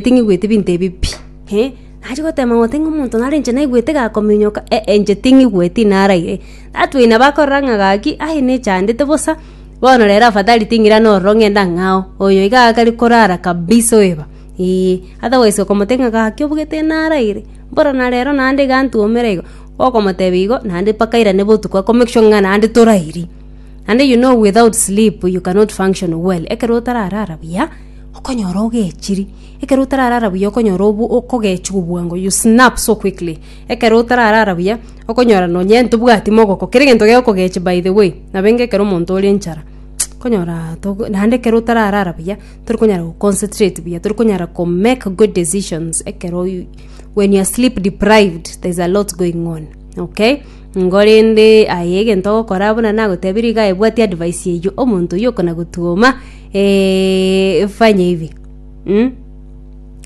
Ting'igweti binto ebi pi. Nachi gotema goteba ng'a omonto naro inche naigwete gakominyoka, ee, inche ting'igweti naraire. That way nabo akorora ng'a gaki, aye nechandete bosa, bono rero afadhali ting'ira nororo ng'ende ang'e ao, oyo iga agakare korara kabisa oeba, eeh. Otherwise okomotebia ng'a gaki obugete naraire, mboro na rero naende iga ntwomera igo, okomotebia igo, naende mpaka airane botuko ako make sure ng'a naende torairi. Naende you know without sleep you cannot function well, ekero otararara buya. Okonyora ogechiri, ekero otararara buya okonyora obu- okogechiwa obwango, you snap so quickly. Ekero otararara buya, okonyora nonye ntobwati mogoko, kera egento gegokogechi by the way, nabenga ekero omonto ore enchara, konyoraa togo naende ekero otararara buya, tori konyara go concentrate buya, tori konyara ko make good decisions ekero oyi when you are sleep deprived, there's a lot going on, okay? Nigo rende aye egento ogokora buna nagotebirie iga aye bwatia advice eyio, omonto oyio okona gotwoma. Eh, fanya hivi mm?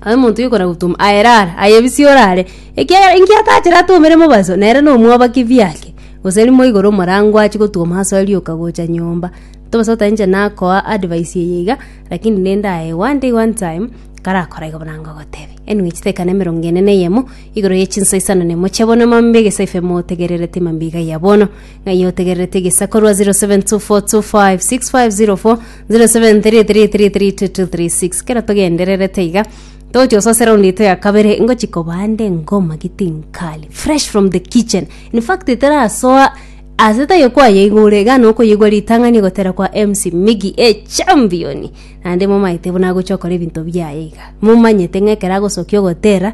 aye omonto yokora gutuma aye rara aye bisi orare ekiagera inki atachera atomere mobaso nere nomwabaki biake gose rimo igoro omorango achi gotwoma asoe rioka gocha nyomba tobaso oteba inche nakoa advice eye iga lakini rende aye one day one time karakora iga buna ngogotebe anyway chitekane emerongo ene na eyemo igoro ye chinsa isano na emo chia bono mambia egesaifo emotegererete mambia iga ya bono Ng'ai otegererete egesaku korwa 0724256504 0733332236 kera togendererete iga togochia gosoa seraundi yaito ya kabere ngochi kobande ngoma giti nkali fresh from the kitchen in fact iterasoa ase tayo kwayeigwa ore iga noo okoyeigwa ritang'ani ogotera kwa MC Migi echampioni naende momaete buna agochia okora ebinto biaye iga momanyete ng'a ekero agosokia ogotera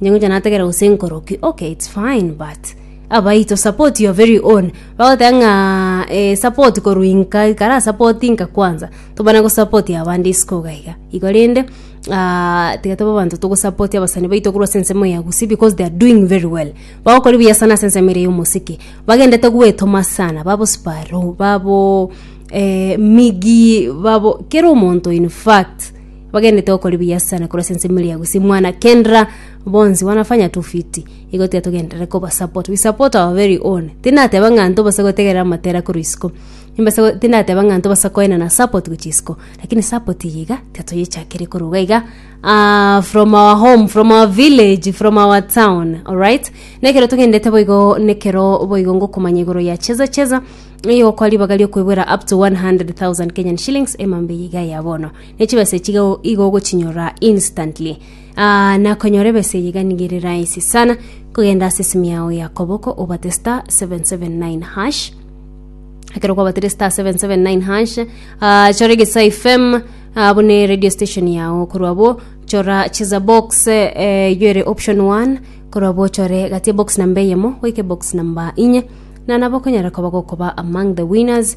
Inche ngocha nategera gose nkoroki okay it's fine but abaito support your very own bagoteba ng'a eh, support korwa inka kara support inka kwanza tobana gosupport abande isiko iga iga igo rende ah, tiga tobe abanto togosupport abasani baito korwa ase ensemo ya gusii because they are doing very well bagokora buya sana ase ensemo ere ya omosike bagendete goetoma sana babo sparrow babo eh, migi babo kera omonto in fact. Bagenete okori buya sana korwa sense mili ya Gusii mwana Kendra bonsi wanafanya tu fiti igo tiga togenderere koba support we support our very own tinateba ng'a ntobase gotegerera amatera korwa isiko nimbase go tindateba ng'a ntobasa koenana support gochia isiko lakini support eye iga tiga toyechakerie korwa iga iga aah from our home from our village from our town alright na ekero togenderete boigo na ekero boigo ngokomanya igoro ya cheza cheza nigo kwa ribaga riokoebwera up to 100,000 Kenyan shillings emambia iga ya bono. ne chibesa echiga igo ogochinyorora instantly. Aa, na konyora ebesa eye iga nigo ere rahisi sana, kogenda ase esimu yao ya koboko obate star 779 hash ekero kwabatire star 779 hash ah, chora egesa fm ah, bune radio station yao korwa bo chora cheza box eh, eyo ere option 1 korwa bo chore gatie box namba eyemo goike box namba inye na nabo okonyara koba gokoba among the winners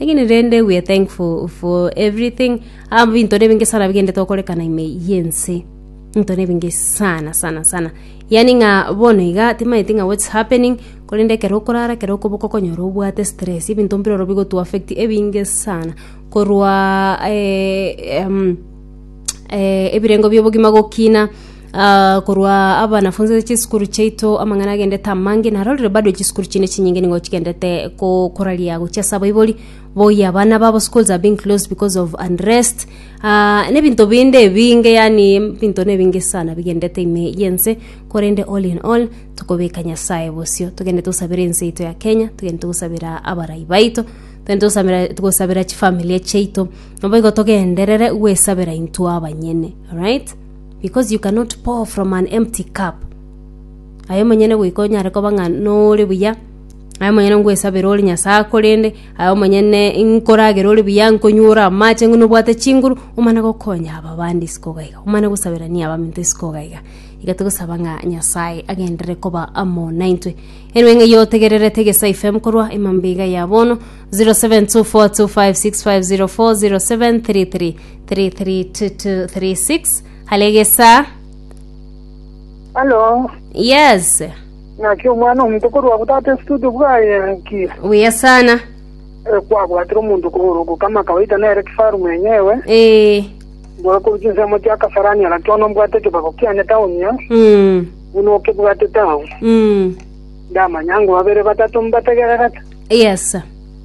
Lakini rende we are thankful for everything. Ah, binto nebinge sana bigende tokorekana ime yense. Binto nebinge sana sana sana. Yani nga bono iga timaeti nga what's happening korende kero okorara kero okoboko konyora obwate stress ebinto mpiroro bigotu affect ebinge sana korwa eh, um, eh, ebirengo biobogima gokina Aa, korwa abanafunzi ase chisukuru chiaito amang'ana agendete amange, narorire bado chisukuru chinde chinyinge nigo chigendete ko- koraria gochia ase abaibori boyia abana babo schools are being closed because of unrest Aa, na ebinto binde ebinge yaani ebinto na ebinge sana bigendete ime y'ense korende all in all tokobeka Nyasaye bosio togendete gosabera ense yaito ya Kenya, togendete gosabera abarai baito, togendete gosamera gosabera chifamilia chiaito, naboigo togenderere goesabera intwe abanyene alright. Because you cannot pour from an empty cup. Aye omonyene goika onyare koba ng'a nore buya, aye omonyene ngwesabere ore Nyasae akorende, aye omonyene nkoragere ore buya, nkonywa ore amache, ng'una obwate chinguru, omana gokonya aba bande isiko iga iga, omana gosaberania abaminto isiko iga iga. Iga togosaba ng'a Nyasae agenderere koba amo naintwe. Erwe ng'eyio otegererete Egesae FM korwa emambia iga ya bono, 0724256504, 0733 332236 halegesa Halo, yes naki omwana omonto korwa agwo tata estudio bwaye ki buya sana Eh, kwabwatire omonto kogoro gokama kawaida nere kifaru mwenyewe eh bora koruta ensemo chia kasarani ara kiono mbwate ekebago kiane taoni ya mm buna okebwate tao mm ndamanya ngo babere batato mbategererete yes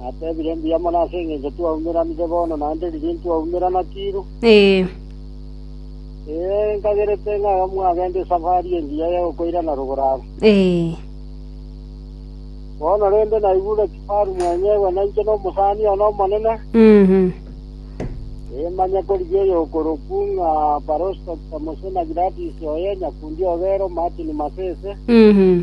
Natebire, Mbuya mono ase engencho twaumeranire bono, naende riria intwaumerana tiru. Ee. Ee, nkagerete ng'a mwagenda esafari engiya ya gokoirana rogoro aba. Ee. Bono rende naigure kifaru mwenyegwe na inche nomosani one omonene, Mhm. ee, manye korigia oyokorokwu ng'a Paraustos Samosona Giladis oye, nyakundi o Gero, Martin Masese, Mhm.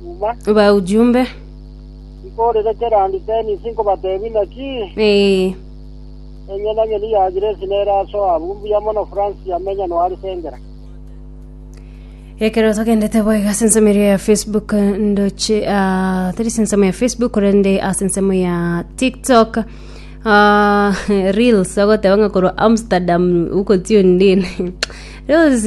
Chuma. Ba ujumbe. Nkorire kera nditenisi nkobatebi naki? Ee. Enye na nyoni ya Grace nere asoa abu mbuya mono Francis amenya no Arisengera. Ekero togendete boiga ase ensemo eria ya Facebook ndoche ah, tari ase ensemo ya Facebook korende ase ensemo ya TikTok ah, reels agoteba ng'a korwa Amsterdam ukotiundine reels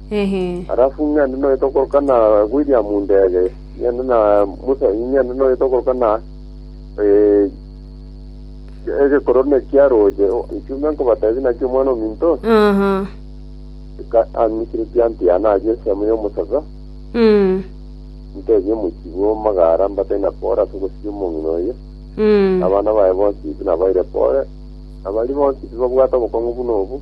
Alafu ng'ende noyete okoroka na William Ndege, ng'ende na Musa, ng'ende noyete okoroka na eh, egekorone kia roche ichumbe nkobatebi nakio omwana ominto anikire tianti yane aye esemo y'omosacha ntebie omochi bw'omagara mbate na pore ase ogosiria omong'ina oye abana baye bonsi nabaire pore abari bonsi tibabwate obokong'u buna obu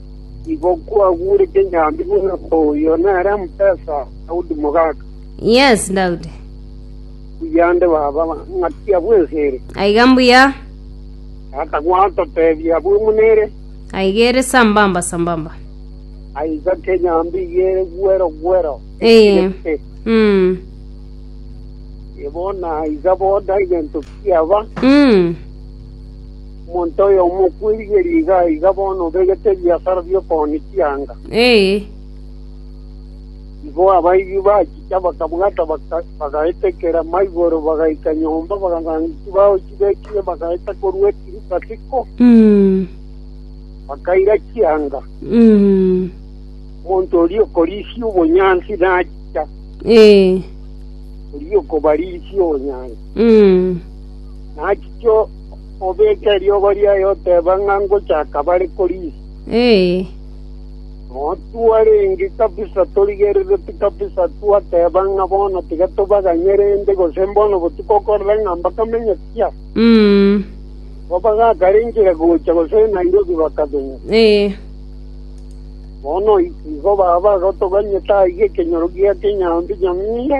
Igo kwagurete nyambi buna oyo nere omoteesa Daudi mogaaka. Yes, Daudi. Mbuya nde baba, ng'akia bw'ense ere. Aiga mbuya. Tata gwatotebia abwo buna ere. Aiga ere sambamba sambamba. Aiga ke nyambi igere gwero gwero. Eye. Mm. Igo naiga boda egento kiaba. Mm. Omonto oyomo okwerigeria iga na iga bono obegete ebiasara bi'okooni chianga. Ee. Igo abaibwi bachicha bakabwata, bagaetekera maigoro, bagaika nyomba, bakaganga chibao chibekire, bagaeta korwa etiruka tiko, bakaira chianga. Omonto oria okorisia obonyansi nachicha, Ee. oria okobarisia obonyansi nachicha Obeke eriogo riaye oteeba ng'a ngochaka bare korigia. Motwarenge kabisa, torigereretie kabisa, twateba ng'a bono tiga tobaganye rende, gose mbono botuko okorora ng'a mbakamenye pi. Igo bagakarengire gocha gose Nairobi bakabenya. Bono igo baba bagotoganyete aiga ekenyoro gia Kenyambi nyamura.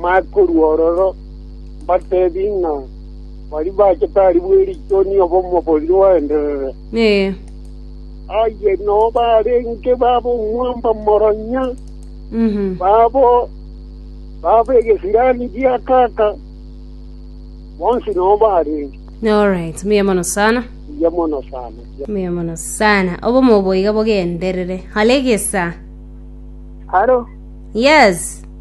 Mae korwa ororo, mbateebie ng'a baria bachete aria bwe riiko nigo omobori oenderere. Ee. Aye noo barenge babe omwamba moronya, babo babe egesirani gia kaka, bonsi noo barenge. Alright, mbuya mono sana. Mbuya mono sana. Mbuya mono sana. Obomo obo iga bogenderere. Hale gesa. Haro. Yes.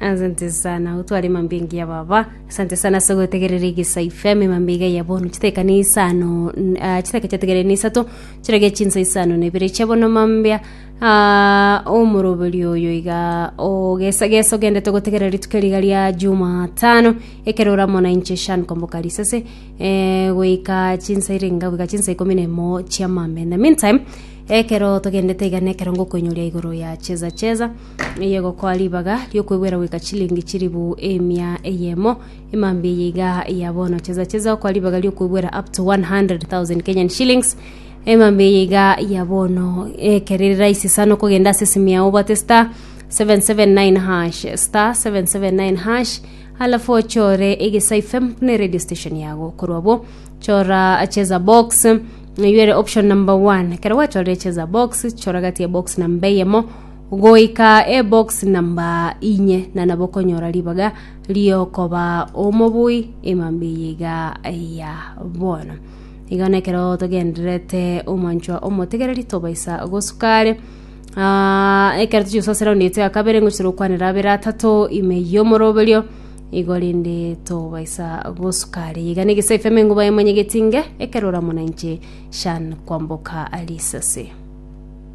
Asante sana utware mambi engiya baba asante sana ase gotegerera egesa ifm mambi iga ya bono chiteka ni isano n- ah, chiteka chategerere ni isato chirage chinsa isano na ibere chia bono mambia ah, omoroberi oyo iga ogesa gesa ogendete gotegerera rituko riga ria jumatano ekero oramo na inche shan komboka risese eh, goika chinsa ire enga goika chinsa ikomi na emo chia mambia in the meantime ekero togendete iga nekero ngokoinyoria igoro ya cheza cheza eyegokoa ribaga riokwegwera goika chilingi chilifu emia eyemo emambia eye iga ya bono chesa chesa okoa ribaga riokwegwera up to 100000 kenyan shillings emambia eye iga ya bono ekero ere raisi sana okogenda ase esimu yago obwate star 779 hash star 779 hash alafu ochore egesaai fm buna eradio station yago korwa abwo chora cheza box oyuere option number one ekero gwachorire cheza box chora gati ya box number eyemo Goika eboxi namba inye na nabo konyora ribaga riokoba omobui emambia iga ya bono iga nekero togenderete omwanchwa omotegereri tobaisa gosukare Ah, ekero tochia gosasera raundi yaito ya kabere ngochia gokwanera abere atato ime yomoroberio igo rende tobaisa gosukare iga na egesaifo emengo baye mwanyegetinge ekero oramona inche shan kwamboka risase